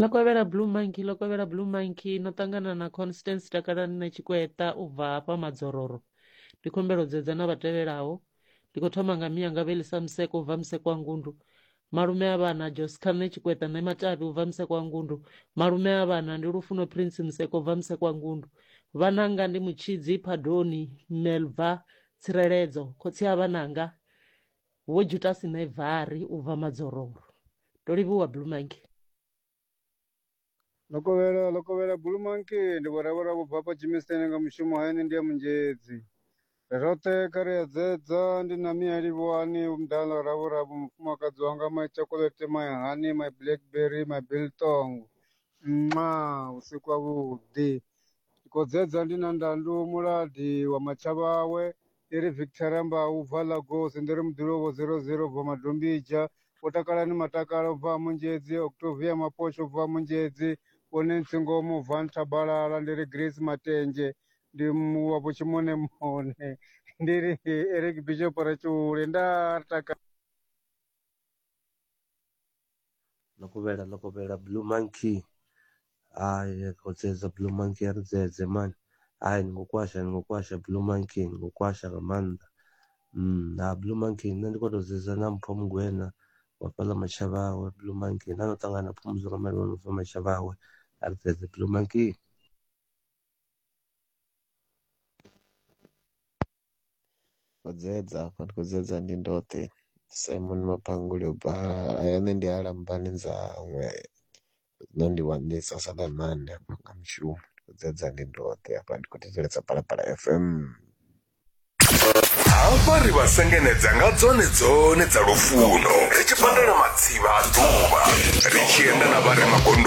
Ḽo kovhela blue monkey ḽo kovhela blue monkey no ṱangana na constance takalani na tshikweta u bva hafha madzororo ndi khumbelo dzedza na vhatevhelaho ndi khou thoma nga miyanga vhelisa museko u bva museko wa ngundu malume a vhana joscar nṋe tshikweta nṋe matavhi u bva museko wa ngundu malume a vhana ndi lufuno prince museko u bva museko wa ngundu vhananga ndi mutshidzi phadoni melva tsireledzo khotsi a vhananga Vho Jutasi Mevhari u bva Madzororo. Ndo livhuwa Blue Monkey. Lokovhela, Lokovhela Blue Monkey ndi vhoravhura vho bva hafha Germiston nga mushumo hayani ndi ya Munzhedzi. Ri roṱhe kha ri edzedza ndi na Mia Livhuwani vho Mdala ḽa Ravhura vho mufumakadzi wanga my chocolate my honey my blackberry my biltong. Nxa! Vhusiku havhuḓi. Ri khou dzedza ndi na Ndandu Muladi wa Matshavhawe ndi ri victor ramba u bva lagos ndi ri muḓulovo 00 bva madombija vho takalani matakala u bva munzhedzi octovia mapotsho u bva munzhedzi vho nancy ngomo u bva nthabalala ndi ri grace matenje ndi wa vhutshimonemone ndi ri eric bishop ratshule nda ri takala ḽo kovhela ḽo kovhela blue monkey hayi khotsedza blue monkey a ri dzedze mani hayi ni khou kwasha ni khou kwasha blue monkey ni khou kwasha nga maanḓa na blue monkey nṋe ndi khou tou dzedza na mpho mugwena wa fhaḽa matshevha awe blue monkey na no ṱangana phumudzo nga mali wa no pfha matshevha awe a ri dzedze blue monkey. Khou dzi edza hafha ndi khou dzi edza ndi ndoṱhe Simon Mapanguli u bva aya nṋe ndi a Lambani Nzamwe zwino ndi Waniswa Saḽamane hafha nga Mushumo ndi khou dzi edza ndi ndoṱhe hafha ndi khou thetshelesa Phalaphala F_M. Hafha ri vha sengenedza nga dzone dzone dza lufuno ri tshi pandela matsivha a ḓuvha ri tshi enda na vhare magondo.